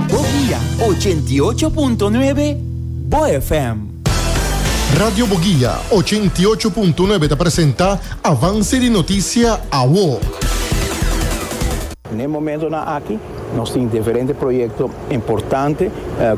Bo guia ochenta i ocho punto nuebe Bo FM. Radio Bo Guia ochenta i ocho punto nuebe ta presenta Avance di Noticia Awo. N'e momentonan aki nos tin diferente proyekto importante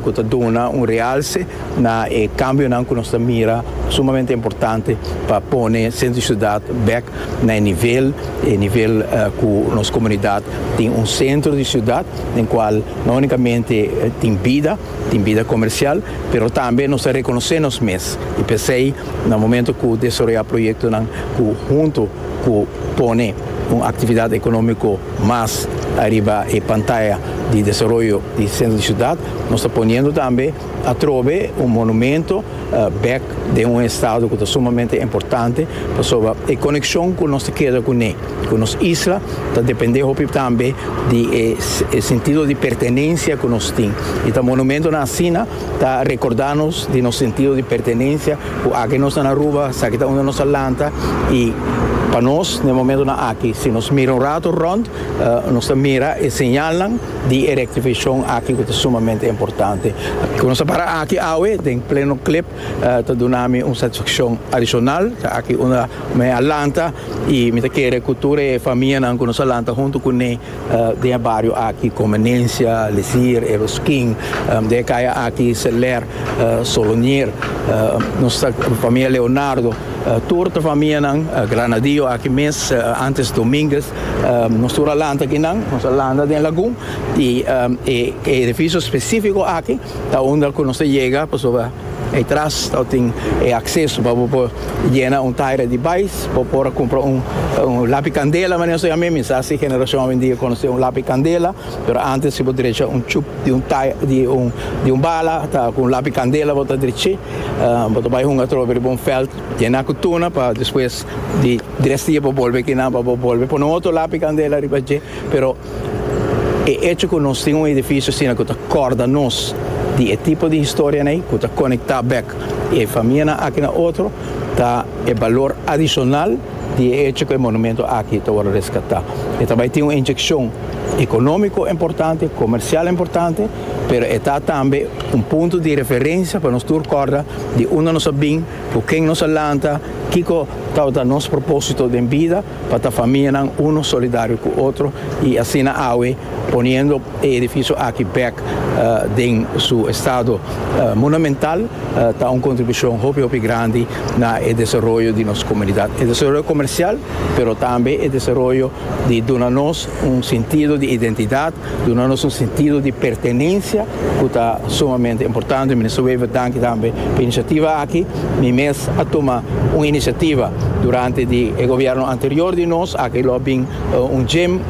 ku ta duna un realse na e kambionan ku nos ta mira sumamente importante pa pone Sentro di Siudat bèk na e nivel e nivel ku nos komunidat tin un sentro di siudat den kual no unikamente tin bida tin bida komersial pero tambe nos ta rekonosé nos mes i p'esei na momento ku desaroyá proyektonan ku huntu ku pone un aktividat ekonómiko mas ariba e pantaya di desaroyo di sentro di siudat nos ta poniendo tambe Atrobe un monumento bek den un estado cu ta sumamente importante pasobra e conexion cu nos ta keda cu ne, cu nos isla, ta depende hopi tambe di e sentido di pertenencia cu nos tin. Y ta monumentonan asina ta recorda nos di nos sentido di pertenencia cu aki nos ta na Aruba, esaki ta unda nos ta lanta y pa nos na e momentonan aki si nos mira un rato rond nos ta mira e señalnan. di e rectificacion aki cu ta sumamente importante. Cu nos a para aki awe den pleno clip ta duna mi un satisfaccion adicional, ta aki unda mi a lanta y mi ta kere cu tur e famianan cu nos a lanta hunto cu ne den e bario aki, Convenencia, Lesier, Eroskin, den e caya aki, Seler, Solonier, nos ta familia Leonardo, tur ta famianan, Granadillo aki mes, antes Dominguez, Nos tur a lanta kinan, nos a lanta den lagun y e edificio specifico aki ta unda cu nos ta yega pasobra ey tras ta tin e acceso pa bo por yena un taira di bais, bo por a cumpra un lapi candela mane nos ta yama, mi sa si generacion awendia conoce un lapi candela, pero antes si bo drecha un chup di un taira di un bala ta cu un lapi candela bo ta dreche, bo ta bay hunga atrobe riba un veld yena cu tuna pa despues di. Di resta dje bo bolbe kinan pa bo bolbe pone un otro lapi candela riba dje, pero e hecho cu nos tin un edificio asina cu ta corda nos di e tipo di historianan ey, cu ta conecta bek e famianan aki na otro, ta e balor adicional di e hecho cu e monumento aki ta worde rescata. E ta bay tin un inyeccion economico importante, comercial importante, pero e ta tambe un punto di referencia pa nos tur corda di unda nos a bin, Ku ken nos a lanta? Kiko tabata nos propósito den bida pa ta famianan uno solidario ku otro i asina awe poniendo e edifisio aki bèk den su estado monumental ta un kontribushon hopi hopi grandi na e desaroyo di nos komunidat, e desaroyo komersial pero tambe e desaroyo di duna nos un sintido di identidat. Duna nos un sentido di pertenencia cu ta sumamente importante. Minister Wever, danki tambe pa e iniciativa aki. Mi mes a tuma un iniciativa durante di e gobierno anterior di nos, aki lo a bin un gym,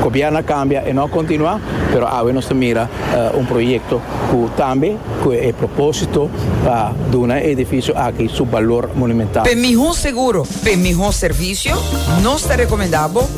gobierno a cambia, e no a continua, pero awe nos ta mira un proyecto cu tambe cu e proposito pa duna e edificio aki su balor monumental. P'e miho seguro, p'e miho servicio, nos ta recomenda bo.